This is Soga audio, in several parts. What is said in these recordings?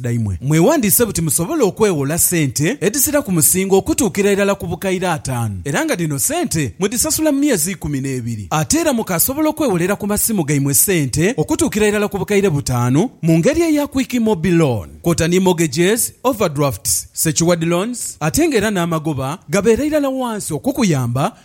dhaimwe. Mwewandiise buti musobole okwewola sente edhisira ku musingo okutuukira irala ku bukaire ataanu era nga dhino sente mudhisasula mu myezi ikumi n'ebiri. Ate era mukaasobola okwewolera ku masimu gaimwe sente okutuukira irala ku bukaire butaanu mu ngeri eya Quick Mobi Loan kwota ni mortgages, overdrafts, secured loans ate nga era n'amagoba gabeera irala wansi okukuyamba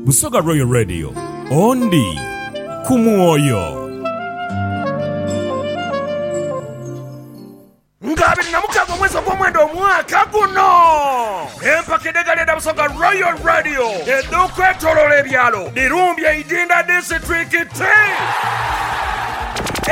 Busoga Royal Radio, Ondi ku mwoyo. Nga abiri na mukaga omwezi ogw'omwenda omwaka guno empaka edhegali edha busoga royal radio edhokwetolola ebyalo dhirumbye idinda disiturikiti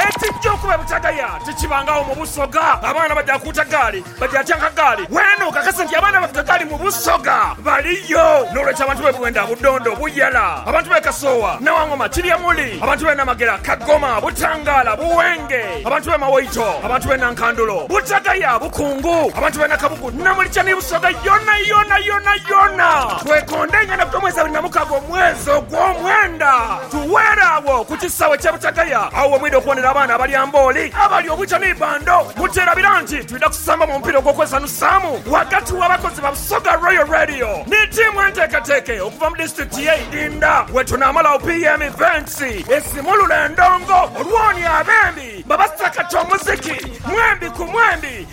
ekijja okuba ebutagaya tikibangagho mu busoga abaana baja kuuta gaali Bali atya Nkagaali weena okakase nti abaana baffe Kagaali mu Busoga baliyo. N'olwekyo abantu b'e Bwenda, Budondo, Buyala, abantu b'e Kasoowa, Nawangoma, Kiryamuli, abantu b'e Namagera, Kagoma, Butangaala, Buwenge, abantu b'e Mawoito, abantu b'e Nankandulo, Butagaya, Bukungu, abantu b'e Nakabugu, Namulcha ni Busoga yonayona yonayona. Twekonda engendakutya omwezi abiri na mukaaga omwezi ogw'omwenda. Tuweere agho ku kisaawe ky'e Butagaya. Agho we mwidha okubonera abaana abalya mbooli, abalya obwita ni bando. Mukyerabira nti twidha kusamba mu mupiira ogw'okwesanhusaamu ghagati w'abakozi ba Busoga Royal Radio ni tiimu enteeketeeke okuva mu disitulikiti y'e Idinda we tunaamala opm Events esimulule endongo olw'oni abembi babasakata omuziki mwembi ku mwembi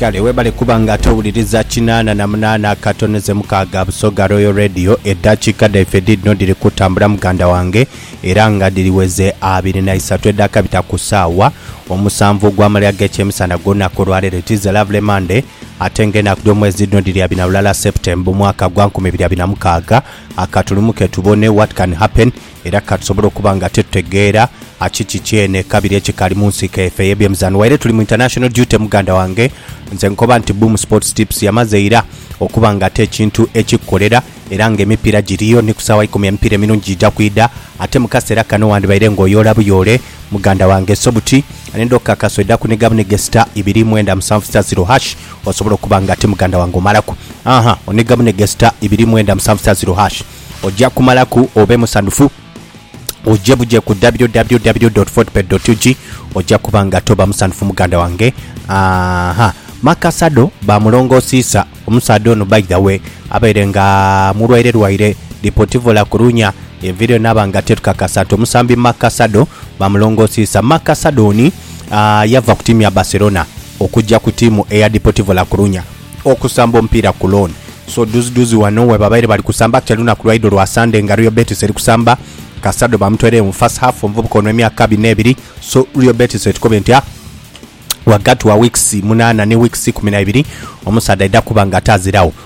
Kale webale kuba nga towuliriza kinaana na munaana akatono ze mukaaga Busoga Royal Radio. Eddakiika dhaife dhiidhino dhiri kutambula muganda wange era nga dhiriweze abiri na isatu edhakabita ku saawa omusanvu ogw'amalya g'ekyemisana gw'olunaku olwaleero. It is a lovely Monday ate nga enaku dh'omwezi dhiidhino dhiri abiri na lulala September omwaka gwa nkumi ibiri abiri na mukaaga. A Katulumuke tubone what can happen era katusobole okuba nga titutegeera kiki kyene kabiri ekikali munsiko efe eyebyemizano waire tuli mu international duty muganda wange nze nkoba nti Boom Sports Tips yamaze ira okuba nga ate ekintu ekikukolera era nga emipiira giriyo ni kusaawa ikumi emipiira emirungi gija kwidha ate mukasera kano wandibaire nga oyoola buyoole muganda wange so buti nenda okukakasa oidha kuniga bunige star ibiri mwenda musanvu star ziro hash Osobola okuba nga ti muganda wange omalaku aha onega bunege sita ibiri mwenda musanvu sita ziro hash oja kumalaku obe musanhufu oje buje ku www.fortebet.ug oja kuba nga toba musanhufu muganda wange aha Maka Sado ba mulongo Siisa omusaadha ono by the way abaire nga mulwaire lwaire Deportivo La Coruña evire naba nga terukakasa nti omusambi Maka Sado ba mulongo Siisa Maka Sado oni yava ku tiimu ya Barcelona okugya ku tiimu eya Deportivo La Coruña okusamba omupiira ku loan. So dhuziduzi ghano webabaire bali kusamba actually lunaku lwaidho lwa Sunday nga Real Betis eri kusamba Casado bamutweiregho mu first half omuvubuka ono emyaka abiri n'ebiri so Real Betis etukobe nti a ghagati wa weeks munaana ni weeks ikumi na ibiri omusaadha aidha kuba nga ate aziragho.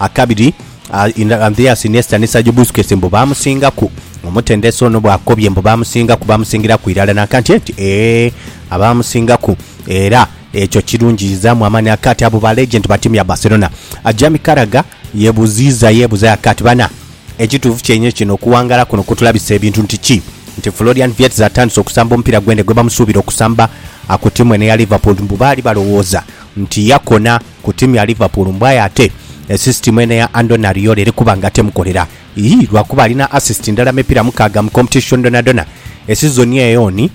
Akabiri, Andreas Iniesta ni Sergio Busquets mbu baamusingaku. Omutendesi ono bw'akobye mbu baamusingaku, baamusingiraku irala n'akanti nti, Ee, abaamusingaku. Era ekyo kirungiizaamu amaani aka ati abo ba legend ba tiimu ya Barcelona. Jamie Carragher yebuziiza yeebuzayo aka ati, Bana, ekituufu kyenhe kino okuwangaala kuno kutulabisa ebintu nti ki? Nti Florian Wirtz atandise okusamba omupiira gwene gwebamusuubira okusamba ku tiimu eno eya Liverpool mbu baali balowooza nti yakona. ku tiimu ya Liverpool mbu aye ate esisitimu eno eya Andoni Ariola eri kuba nga temukolera ii lwakuba alina asisiti ndala mu mipiira mukaaga mu kompetishoni dhonadhona esizoni eyo. Oni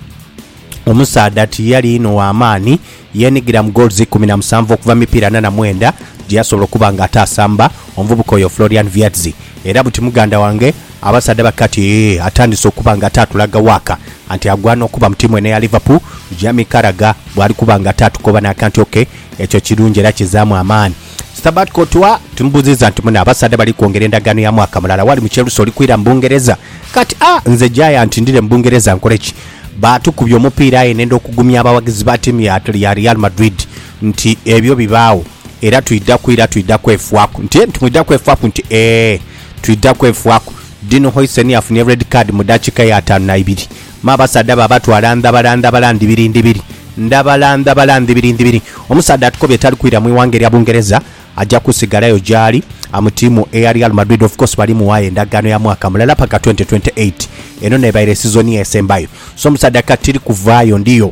omusaadha tiyali inho wa maani, yeenigira mu gooluzi ikumi na musanvu okuva mu mipiira ana na mwenda gye yasobola okuba nga ate asamba omuvubuka oyo Florian Wirtz. Era buti muganda wange abasaadha ba kati ee atandise okuba nga ate atulaga waaka nti agwana okuba mu tiimu eno eya Liverpool, Jamie Carragher bw'ali kuba nga ate atukoba n'akanti. OK. Ekyo kirungi era kizaamu amaani. Stabat Courtois, Timubuziza nti muna abasaadha bali kwongera endagaano ya mwaka mulala wali mu Chelsea oli kwira mu Bungereza kati? A, Nze Giant ndhire mu Bungereza nkole ki? Baatukubya omupiira aye nenda okugumya abawagizi ba tiimu ya ya Real Madrid nti ebyo bibaagho era twidha kwira twidha kwefwaku nti nti mwidha kwefwaku nti ee twidha kwefwaku. Dino Huijsen yafunye red card mu dakiika ya ataanu na ibiri. Ma abasaadha baabatwala ndhabala ndhabala ndhibiri ndhibiri. Ndhabala ndhabala ndhibiri ndhibiri. Omusaadha atukobye tali kwira mu ighanga erya Bungereza, aja kusigalayo gy'ali. Amu tiimu eya Real Madrid of course bali muwayo endagaano ya mwaka mulala paka twenty twenty eight. Eno n'ebaire sizoni esembayo. So omusaadha kati tiri kuvaayo ndiyo.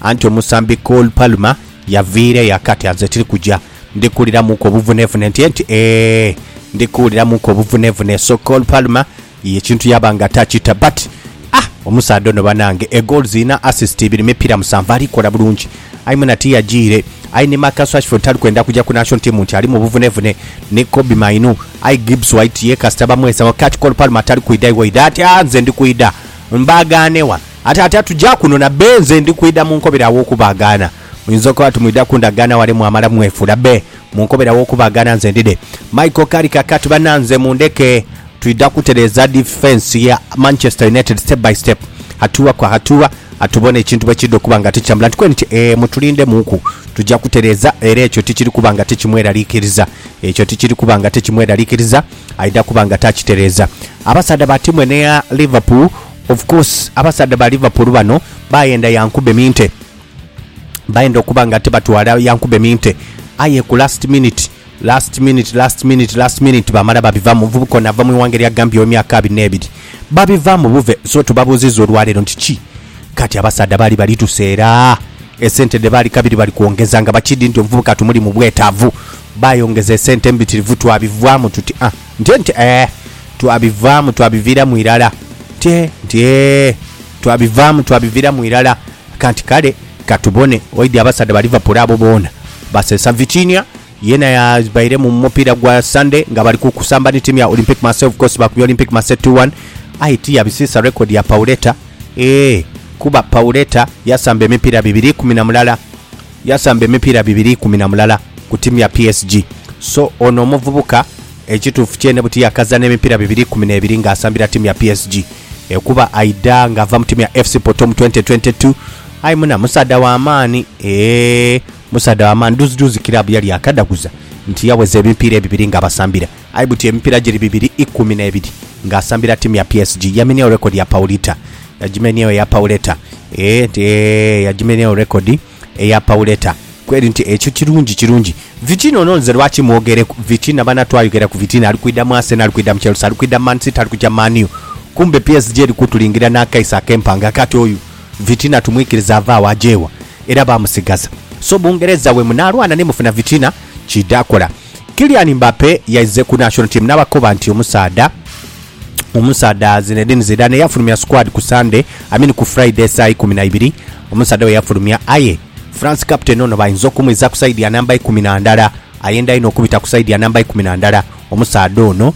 Anti omusambi Cole Palmer yaviira eyo akati anze tiri kuja ndi kuwuliramuuku obuvunevune nti enti eeh ndi kuwuliramuuku obuvunevune so Cole Palmer ye ekintu yaba nga takita but ah omusaadha ono banange e goals ina assist ibiri mipira musanvu ali kola bulungi aye mwena tiyajiire aye ni Marcus Rashford tali kwenda kuja ku national team nti alimu obuvunevune ni Kobbie Mainu aye Gibbs White ye kasita bamwesawo kati Cole Palmer tali kwidha iwe oidha ati aah nze ndi kwidha mbagaane wa Ate atya tuja kuno na be nze ndi kwidha mu nkobera aw'okubaagaana. Muyinza okuba ati mwidha ku ndagaano wale mwamala mwefuula be mu nkobera aw'okubaagaana nze ndidhe. Michael, Kali kakati bananze mundheke twidha kutereeza difensi ya Manchester United step by step, hatua kwa hatua, tubone ekintu bwe kiidha okuba nga tikitambula. Nti kweni ti, Ee, mutulindhemuuku. Tuja kutereeza, era ekyo tikiri kuba nga tikimweraliikiriza. Ekyo tikiri kuba nga tikimweraliikiriza. Aidha kuba nga takitereeza. Abasaadha ba tiimu eno eya Liverpool Of course abasaadha ba Liverpool bano bayenda Yankube Minteh, bayenda okuba nga tibatwala Yankube Minteh aye ku last minute last minute last minute last minute bamala babivamu. Omuvubuka ono ava mu ighanga erya Gambia ow'emyaka abiri n'ebiri. Babivamu buve so tubabuuzizza olwaleero nti ki kati abasaadha baali bali tuseera esente dhe baali kabiri bali kwongeza nga bakiidhi nti omuvubuka tumuli mu bwetaavu. Baayongeza esente mbitirivu twabivaamu tuti ah. Nte, nte, eeh, twabivaamu, twabiviiramu irala. Nte, nte, eeh, twabivaamu, twabiviiramu irala. Kanti kale, ka tubone, waidhi abasaadha ba Liverpool abo boona baseesa Vitinha, yeena yabaire mu mupiira gwa Sande nga bali ku kusamba ni tiimu ya Olympique Marseille, of course baakubye Olympique Marseille two one, aye tiyabisiisa rekodi ya Pauleta, eeh, kuba Pauleta yasamba emipiira bibiri ikumi na mulala Yasamba emipiira bibiri ikumi na mulala ku tiimu ya PSG. So ono omuvubuka ekituufu kyene buti yakaza n'emipiira bibiri ikumi n'ebiri ng'asambira tiimu ya PSG ekuba aidha ng'ava mu tiimu ya FC Porto mu twenti twenti tu. Aye muna musaadha wa maani eeh musaadha wa maani. Dhuuzidhuuzi kiraabu yali yakadhaguza nti yaweza emipiira ebibiri ng'abasambira. Aye buti emipiira giri bibiri ikumi n'ebiri ng'asambira ttiimu ya PSG. Yamenyagho rekodi ya Paulita. Yagimenyaagho eya Pauleta. Eeh nti eeh yagimenyaagho rekodi eya Pauleta. Kweri nti ekyo kirungi kirungi. Vitinha ono nze lwaki mwogereku? Vitinha bana twayogera ku Vitinha ali kwidha mu Arsenal, ali kwidha mu Chelsea, ali kwidha mu Man City, ali kuja Man U. Kumbe PSG eri kutulingira n'akaiso ak'empanga. Kati oyo Vitinha tumwikirize ave agho aje wa? Era baamusigaza. So Bungereza bwe munaalwana ni mufuna Vitinha, kiidha kola. Kylian Mbappe yaize ku National Team nabakoba nti omusaadha omusaadha Zinedine Zidane yafulumya squad ku Sunday, I mean ku Friday saa ikumi na ibiri omusaadha weyafulumya aye France captain ono bainza okumwiza ku side ya namba ikumi na ndala ayenda inho okubita ku side ya namba ikumi na ndala omusaadha ono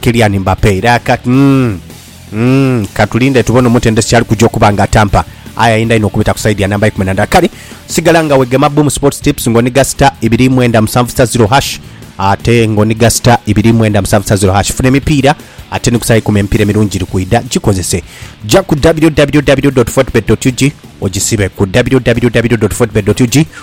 Kylian Mbappe era kati. Umm ka tulinde tubone omutendesi kyali kuja okuba nga atampa aye ayinda inho okubita ku side ya namba ikumi na ndala kale sigala nga wegema Boom Sports Tips nga oniga star ibiri mwenda musanvu star zero hash ate nga oniga star ibiri mwenda musanvu star zero hash funa emipiira ate ni ku saa ikumi emipiira emirungi giri kwidha gikozese ja ku www.fortebet.ug ogisibe ku www.fortebet.ug